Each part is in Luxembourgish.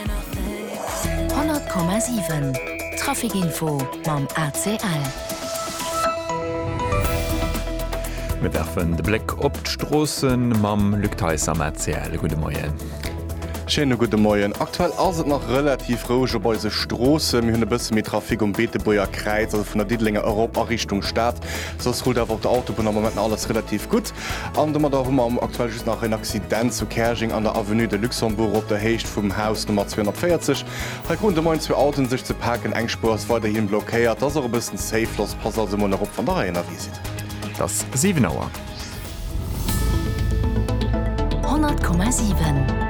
100,7 Trafic Info mam ACL. Mir werfen de Bléck op d'Stroosse mam Luc Theis am ACL. Gudde Moien. Schéine gudde Moien. Aktuell ass et nach relativ roueg op eise Stroossen. Mir hunn e bësse méi Trafic um Beetebuerger Kräiz, also vun der Diddelenger erop a Richtung Stad. Soss rullt awer op der Autobunn am Moment nach alles relativ gutt. An domadder hu mer aktuell just nach en Accident zu Käerjeng an der Avenue de Luxembourg op der Héicht vum Haus Nummer 240. Hei kruten de Moien zwee Autoen sech ze paken. Eng Spuer ass weiderhi blockéiert. Ass och e bëssen zéif los. Passt also emol nach op, wann der hei ënnerwee sidd. Et ass 7 Auer. 100,7.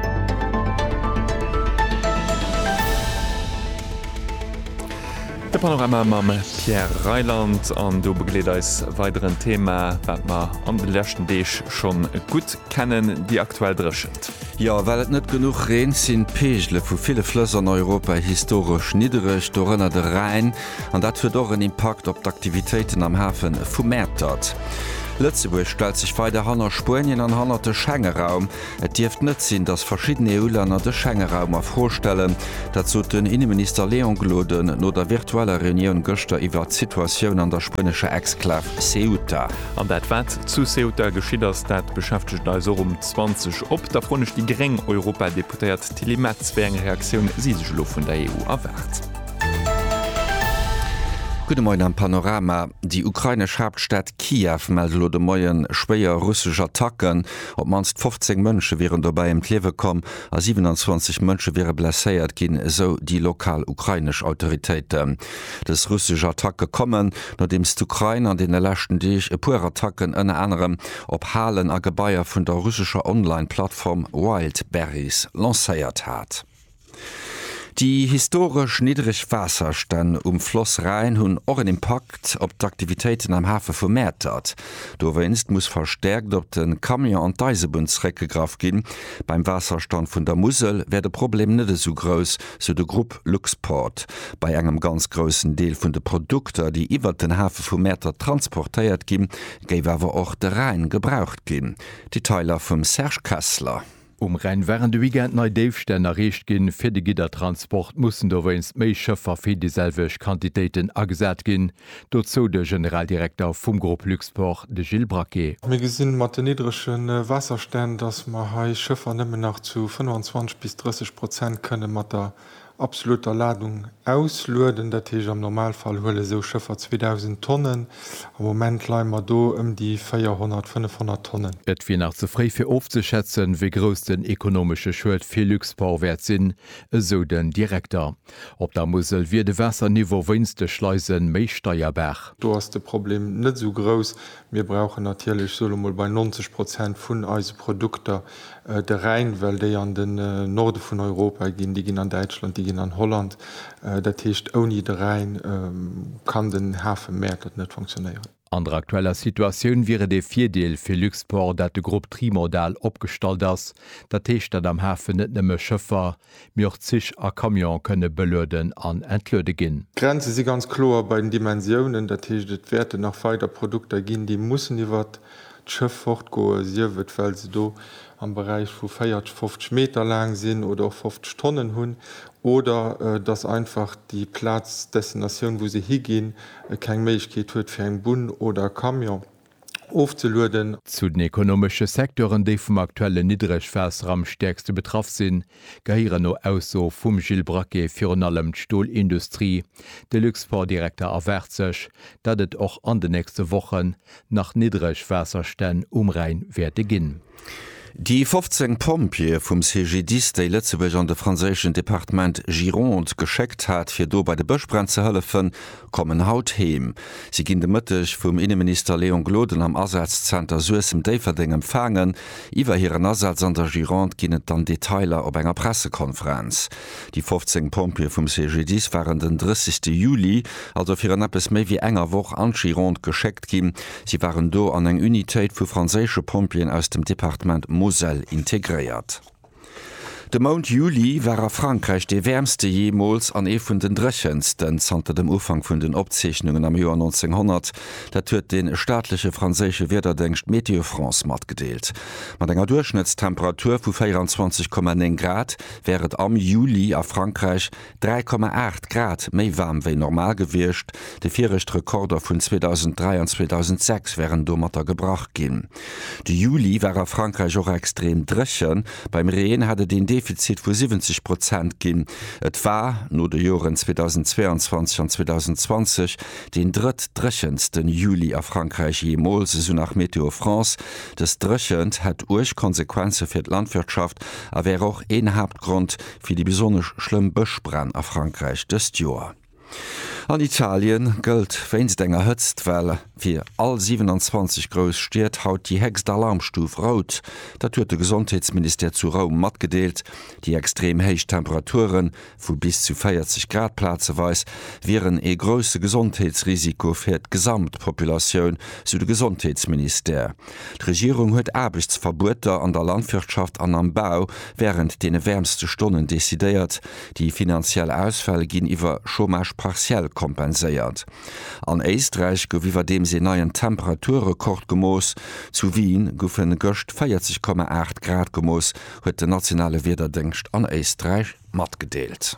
De Panorama mam Pierre Reyland an do begleet eis weider en Thema, wat mer an de leschten Deeg schonn gutt kennen, déi aktuell Dréchent. Jo, well et net genuch reent, sinn d'Peegele vu ville Flëss an Europa historesch niddereg, dorënner de Rhäin, an dat huet och en Impakt op d'Aktivitéiten am Hafe vu Mäertert. Lëtzebuerg stellt sech weider hanner Spuenien an hanner de Schengeraum. Et dierft net sinn, datt verschidden EU-Länner de Schengeraum a Fro stellen. Dat sot den Inneminister Léon Gloden no der virtueller Reunioun gëschter iwwert d'Situatioun an der spuenescher Exklav Ceuta. An dat wat zu Ceuta geschitt ass, dat beschäftegt eis och um 20 op da froen ech déi gréng Europadeputéiert Tilly Metz, wéi eng Reaktioun si sech elo vun der EU erwaart. Gudde Moien am Panorama. Déi ukrainesch Haaptstad Kiew mellt elo de Moien schwéier russesch Attacken. Op d'mannst 15 Mënsche wieren dobäi ëm d'Liewe komm a 27 Mënsche wiere blesséiert ginn, esou déi lokal ukrainesch Autoritéiten. Dës russesch Attacke kommen, nodeems d'Ukrain an deene leschten Deeg e puer Attacken ënner anerem op Halen a Gebaier vun der russescher Online-Plattform Wildberries lancéiert hat. Déi historesch niddreg Waasserstänn um Floss Rhäin hunn och en Impakt op d'Aktivitéiten am Hafe vu Mäertert. Dowéinst muss verstäerkt op de Camion an d'Eisebunn zeréckgegraff ginn. Beim Waasserstand vun der Musel wär de Problem net esou grouss, sou de Grupp Luxport. Bei engem ganz groussen Deel vun de Produkter, déi iwwert den Hafe vu Mäertert transportéiert ginn, géif awer och de Rhäin gebraucht ginn. Detailer vum Serge Kessler. Um Rhäin waren de Weekend nei Déifstänn erreecht ginn. Fir de Giddertransport mussen dowéinst méi Schëffer fir déi selwecht Quantitéiten agesat ginn. Dozou de Generaldirekter vum Grupp Luxport, de Gilles Braquet. Mir gesi mat de niddrege Waasserstänn, datt mer hei Schëffer nëmmen nach zu 25 bis 30 Prozent kënne mat der Absoluter Ladung auslueden, dat heescht am Normalfall huele sou Schëffer 2.000 Tonnen, am Moment leie mer do ëm déi 400, 500 Tonnen. Et wier nach ze fréi fir ofzeschätzen, wéi grouss den ekonomesche Schued fir Luxport wäert sinn, esou den Direkter. Op der Musel wier de Waasserniveau wéinst de Schleise méi steierbar. Do ass de Problem net esou grouss, Mir brauchen natierlech, ech soen elo mol bei 90 Prozent vun eise Produkter de Rhäin, well déi an den Norde vun Europa ginn, déi ginn an Däitschland, déi ginn an Holland. Dat heescht, ouni de Rhäin kann den Hafe Mäertert net funktionéieren. An der aktueller Situatioun wier et ee Virdeel fir Luxport, dat de Grupp trimodal opgestallt ass, dat heescht, dat am Hafen net nëmme Schëffer, mee och Zich a Camionë kënne belueden an entluede ginn. D'Grenze si ganz kloer bei den Dimensiounen, dat heescht et wäerten nach weider Produkter ginn, déi mussen iwwert d'Schëff fortgoen, sief et well se do am Beräich vu 40, 50 Meter laang sinn oder och 50 Tonnen hunn oder datt einfach déi Plaz, d'Destinatioun, wou se higinn, keng Méiglechkeet huet fir eng Bunn oder e Camion. ofzelueden. Zu den ekonomesche Secteuren, déi vum aktuellen Niddregwaasser am stäerkste betraff sinn, gehéieren no Ausso vum Gilles Braquet virun allem d'Stolindustrie. De Luxportdirekter erwaart sech, datt et och an de nächste Wochen nach Niddregwaasserstänn um Rhäin wäerte ginn. Déi 15 Pompjeeë vum CGDIS, déi Lëtzebuerg an de franséischen Departement Gironde geschéckt hat, fir do bei de Bëschbränn ze hëllefen, kommen haut heem. Si ginn de Mëtteg vum Inneminister Léon Gloden am Asazzenter Suessem-Déifferdeng empfaangen. Iwwer hiren Asaz an der Gironde ginn et dann Detailer op enger Pressekonferenz. Déi 15 Pompjeeë vum CGDIS waren den 30 Juli, also virun eppes méi wéi enger Woch, an d'Gironde geschéckt ginn. Si waren do an eng Unitéit vu franséische Pompjeeën aus dem Departement Moselle integréiert. De Mount Juli war a Frankräich dee wäermste jeemools an ee vun den dréchensten zanter dem Ufank vun den Opzeechnungen am Joer 1900. Dat huet de staatleche franséische Wiederdéngscht Météo France matgedeelt. Mat enger Duerchschnëttstemperatur vu 24,9 Grad wär et am Juli a Frankräich 3,8 Grad méi waarm wéi normal gewiescht, déi viregt Rekorder vun 2003 an 2006 wären domatter gebrach ginn. De Juli war a Frankräich och extrem dréchen, beim Reen hat et een Defizit vu 70 Prozent ginn. Et war, no de Joren 2022 an 2020, deen drëtt-dréchenste Juli a Frankräich jeemools, esou nach Météo France. Dës Dréchent hätt uerg Konsequenze fir d'Landwirtschaft a wär och een Haaptgrond fir déi besonnesch schlëmm Bëschbränn a Frankräich dëst Joer. An Italie gëllt wéinst enger Hëtztwell fir all 27 grouss Stied haut déi héchst Alarmstuf Rout. Dat huet de Gesondheetsministère zu Roum matgedeelt. Déi extrem héich Temperature vu bis zu 40 Grad plazeweis wieren ee grousse Gesondheetsrisiko fir d'Gesamtpopulatioun, sou de Gesondheetsministère. D'Regierung huet Aarbechtsverbueter an der Landwirtschaft an am Bau wärend deene wäermste Stonnen decidéiert. Déi finanziell Ausfäll ginn iwwer Chômage partiel kompenséiert. An Éisträich gouf iwwerdeems een neien Temperaturrekord gemooss. Zu Wien goufe gëscht 40,8 Grad gemooss, huet den nationale Wiederdéngscht an Éisträich matgedeelt.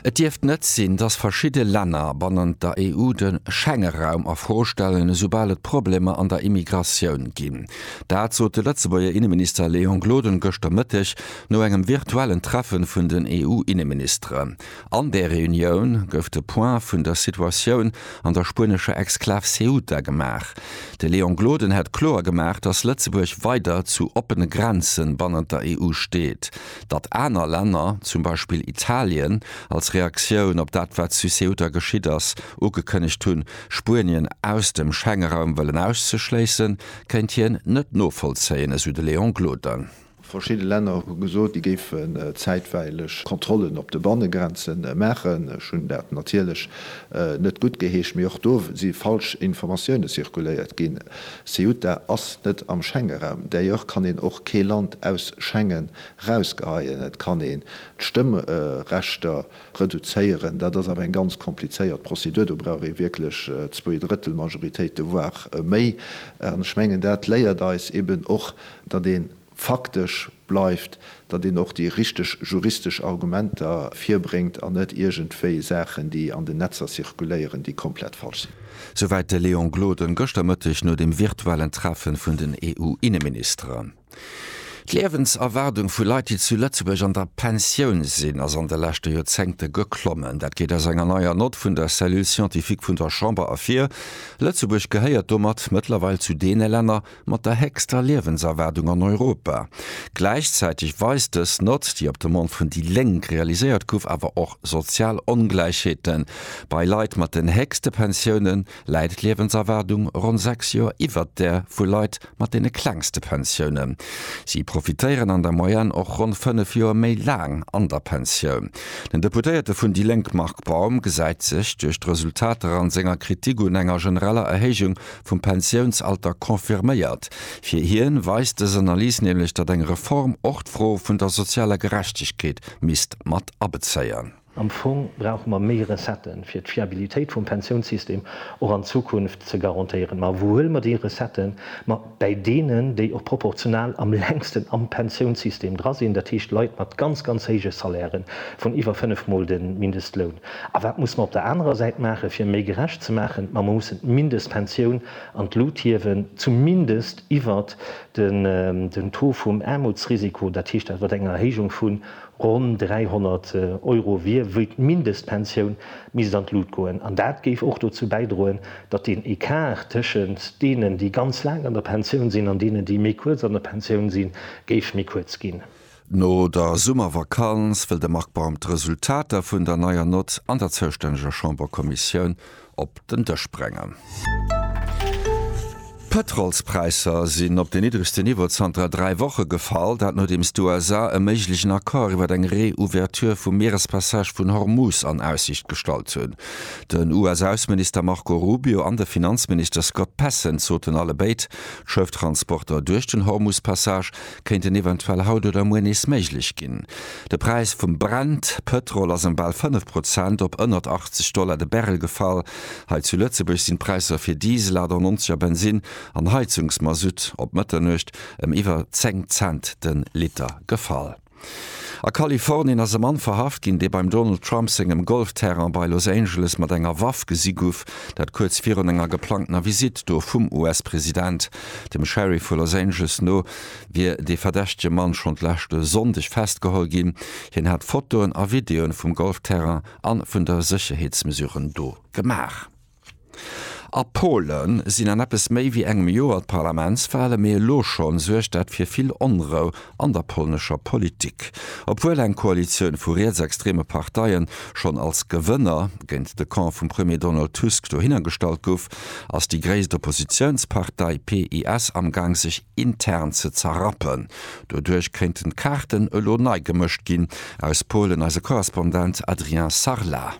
Et dierft net sinn, datt verschidde Länner bannent der EU de Schengeraum a Fro stellen, esoubal et Problemer an der Immigratioun ginn. Dat sot de Lëtzebuerger Inneminister Léon Gloden gëschter Mëtteg no engem virtuellen Treffe vun den EU-Inneministeren. An där Reunioun gouf de Point vun der Situatioun an der spuenescher Exklav Ceuta gemaach. De Léon Gloden hätt kloer gemaach, datt Lëtzebuerg weider zu oppene Grenze bannent der EU steet. Datt aner Länner, zum Beispill Italien, als Reaktioun op dat wat zu Ceuta geschitt ass, ugekënnegt hunn, Spuenien aus dem Schengeraum wëllen auszeschléissen, kéint hien net novollzéien, esou de Léon Gloden. Verschidde Länner hu gesot, déi géifen zäitweileg Kontrollen op de Bannegrenze maachen. Ech hunn dat natierlech net guttgeheescht, mee och do si falsch Informatioune zirkuléiert ginn. Ceuta ass net am Schengeraum. D'ailleurs kann een och kee Land aus Schengen erausgeheien. Et kann een d'Stëmmrechter Reduzéieren, dat ass awer eng ganz komplizéiert Prozedur. Do brauch ee wierklech Zwee-Drëttel-Majoritéite, voire méi. An ech mengen, dat léiert eis eben och, datt ee faktesch bleift, datt een och déi richteg juristesch Argumenter virbréngt an net iergendwéi Saachen, déi an den Netzer zirkuléieren, déi komplett falsch sinn. Souwäit de Léon Gloden gëschter Mëtteg no dem virtuellen Treffe vun den EU-Inneministeren. D'Liewenserwaardung vu Leit, déi zu Lëtzebuerg an der Pensioun sinn, ass an de leschte Joerzéngte geklommen. Dat geet aus enger neier Nott vun der Cellule scientifique vun der Chamber ervir. Lëtzebuerg gehéiert domat mëttlerweil zu deene Länner mat der héchster Liewenserwaardung an Europa. Gläichzäiteg weist dës Nott, déi op Demande vun déi Lénk realiséiert gouf, awer och sozial Ongläichheete bei Leit mat den héchste Pensiounen. läit d'Liewenserwaardung ronn 6 Joer iwwert där vu Leit mat deene klengste Pensiounen. Si profitéieren an der Moyenne och ronn 5 Joer méi laang an der Pensioun. Den Deputéierte vun déi Lénk Marc Baum gesäit sech duerch d'Resultater an senger Kritik un enger genereller Erhéijung vum Pensiounsalter confirméiert. Fir hien weist dës Analys nämlech, datt eng Reform och d'Fro vun der sozialer Gerechtegkeet misst mat abezéien. Am Fong brauche mer méi Recetten, fir d'Fiabilitéit vum Pensiounssystem och an Zukunft ze garantéieren. Ma wou huele mer déi Recetten? Ma bäi deenen, déi och proportional am längsten am Pensiounssystem dra sinn, dat heescht Leit mat ganz, ganz héije Salairen, vun iwwer fënnef Mol de Mindestloun. A wat muss mer op der anerer Säit maachen, fir méi gerecht ze maachen? Ma mer mussen d'Mindestpensioun an d'Lut hiewen, zumindest iwwert den Taux vum Aarmutsrisiko, dat heescht iwwert eng Erhéijung vun Ronn 300 Euro wier wéi d'Mindestpensioun, misst an d'Lut goen. An dat géif och dozou bäidroen, datt deen Ecart tëschent deenen, déi ganz laang an der Pensioun sinn, an deenen, déi méi kuerz an der Pensioun sinn, géif méi kuerz ginn. No der Summervakanz wëll de Marc Baum d'Resultater vun der neier Nott an der zoustänneger Chamberkommissioun op den Dësch bréngen. D'Pëtrolspräisser sinn op den niddregste Niveau zanter dräi Woche gefall. Dat nodeems d'USA e méiglechen Accord iwwer eng Reouverture vum Mierespassage vun Hormuz an Aussiicht gestallt hunn. Den US-Ausseminister Marco Rubio an de Finanzminister Scott Bessent soten allebéid, d'Schëfftransporter duerch den Hormuz-Passage kéinten eventuell haut oder muer nees méiglech ginn. De Präis vum Brent, Pëtrol, ass ëm bal 5 Prozent op ënnert 80 Dollar de Barrel gefall. Hei zu Lëtzebuerg sinn d'Präisser fir Diesel, 98 a Bensinn an Heizungsmasutt op Mëtternuecht ëm iwwer 10 Cent de Liter gefall. A Kalifornien ass e Mann verhaft ginn, dee beim Donald Trump sengem Golfterrain bei Los Angeles mat enger Waff gesi guff, dat kuerz virun enger geplangtener Visitt do vum US-President. Dem Sheriff vu Los Angeles no wier dee verdächtege Mann schonn d'leschte Sonndeg festgeholl ginn. Hien hat Fotoen a Videoen vum Golfterrain a vun der Sécherheetsmesuren do gemaach. A Pole sinn an eppes méi wéi engem Joer d'Parlamentswalen, mee elo schonn suergt dat fir vill Onrou an der polnescher Politik. Obwuel eng Koalitioun vu rietsextreme Parteie schonn als Gewënner géint de Camp vum Premier Donald Tusk dohinner gestallt gouf, ass déi gréisst Oppositiounspartei PiS amgaang sech intern ze zerrappen. Doduerch kéinten d'Kaarten elo nei gemëscht ginn. Aus Polen eise Korrespondent Adrien Sarlat.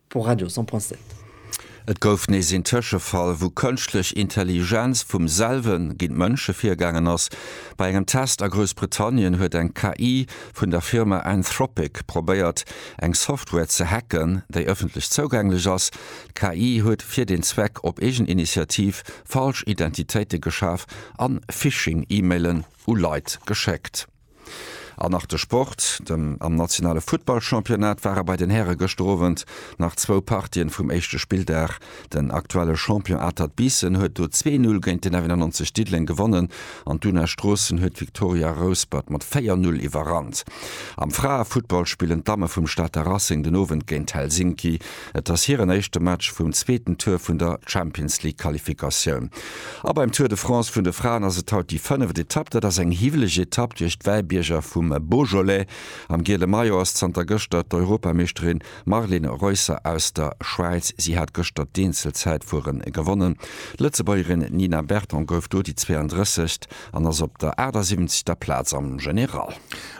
Pour Radio 100.7. Et gouf nees een Tëschefall, wou Kënschtlech Intelligenz vum selwen géint Mënsche virgaangen ass. Bei engem Test a Groussbritannien huet eng KI vun der Firma Anthropic probéiert, eng Software ze hacken, déi ëffentlech zougänglech ass. D'KI huet fir deen Zweck op eegen Initiativ falsch Identitéite geschaf an Phishing-E-Mailen u Leit geschéckt. An nach de Sport, den am nationale Futtballchampionnat ware bei den Häre gëschter Owend nach zwou Partien vum éischte Spilldag. Den aktuelle Champion Atert Biissen huet do zwee Null géint den F91 Diddeleng gewonnen an d'Una Stroossen huet d'Victoria Rouspert mat véier Null iwwerrannt. Am Fraefuttball spillen d'Damme vum Stater Racing den Owend géint Helsinki. Et ass hiren éischte Match vum zweeten Tour vun der Champions-League-Qualifikatioun. A beim Tour de France vun de Fraen ass et haut déi fënneft Etapp. Dat ass eng hiwweleg Etapp duerch d'Wäibierger vum Beaujolais. Am giele Maillot ass zanter gëschter d'Europameeschterin Marlene Reusser aus der Schwäiz. Si hat gëschter d'Eenzelzäitfuere gewonnen. D'Lëtzebuergerin Nina Berton gouf do déi 32. an ass op der 78. Plaz am General.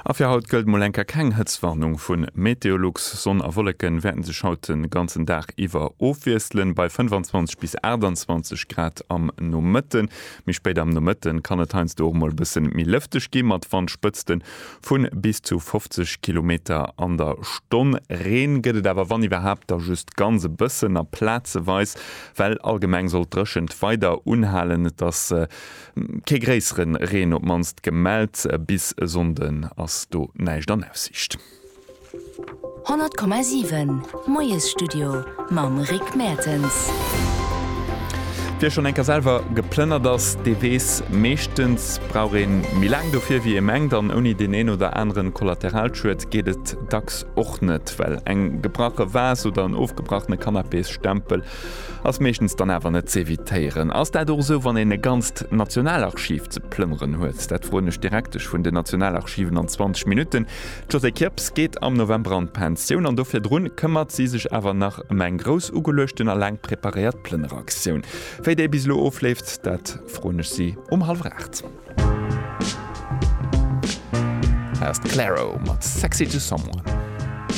A fir haut gëllt mol eng Kéier keng Hëtztwarnung vu Meteolux. Sonn a Wolleke wäerte sech haut de ganzen Dag iwwer ofwiesselen, bei 25 bis 28 Grad am Nomëtte. Méi spéit am Nomëtte kann et heiansdo och mol e bësse méi lëfteg gi mat Wandspëtzte vu bis zu 50 Kilometer an der Stonn. Reen gëtt et awer wann iwwerhaapt da just ganz e bëssen a plazeweis, well allgemeng soll d'Dréchent weider unhalen. Et ass. Kee gréissere Reen op mannst gemellt. Bis e Sonnden ass do näischt an Aussiicht. 100,7 Moiesstudio mam Rick Mertens. Wie schonn eng Kéier selwer geplënnert ass, dee weess, Meeschtens brauch ee méi laang dofir, wéi ee mengt. An ouni deen een oder anere Kollateralschued geet et dacks och net. Well eng gebrache Vase oder en ofgebrachene Canapésstempel Ass meeschtens dann awer net z'evitéieren. Ass dat och esou, wann een e ganzt Nationalarchiv ze plënneren huet? Dat froen ech direkt dech vun den Nationalarchiven an 20 Minutten. D'Josée Kirps geet am November an d'Pensioun an do virdrun këmmert si sech awer nach ëm eng grouss ugeluechten a laang preparéiert Plënneraktioun. Wéi déi bis elo ofleeft, dat froen ech si um hallwer aacht. Hei ass d'Claro mat Sexy to Someone.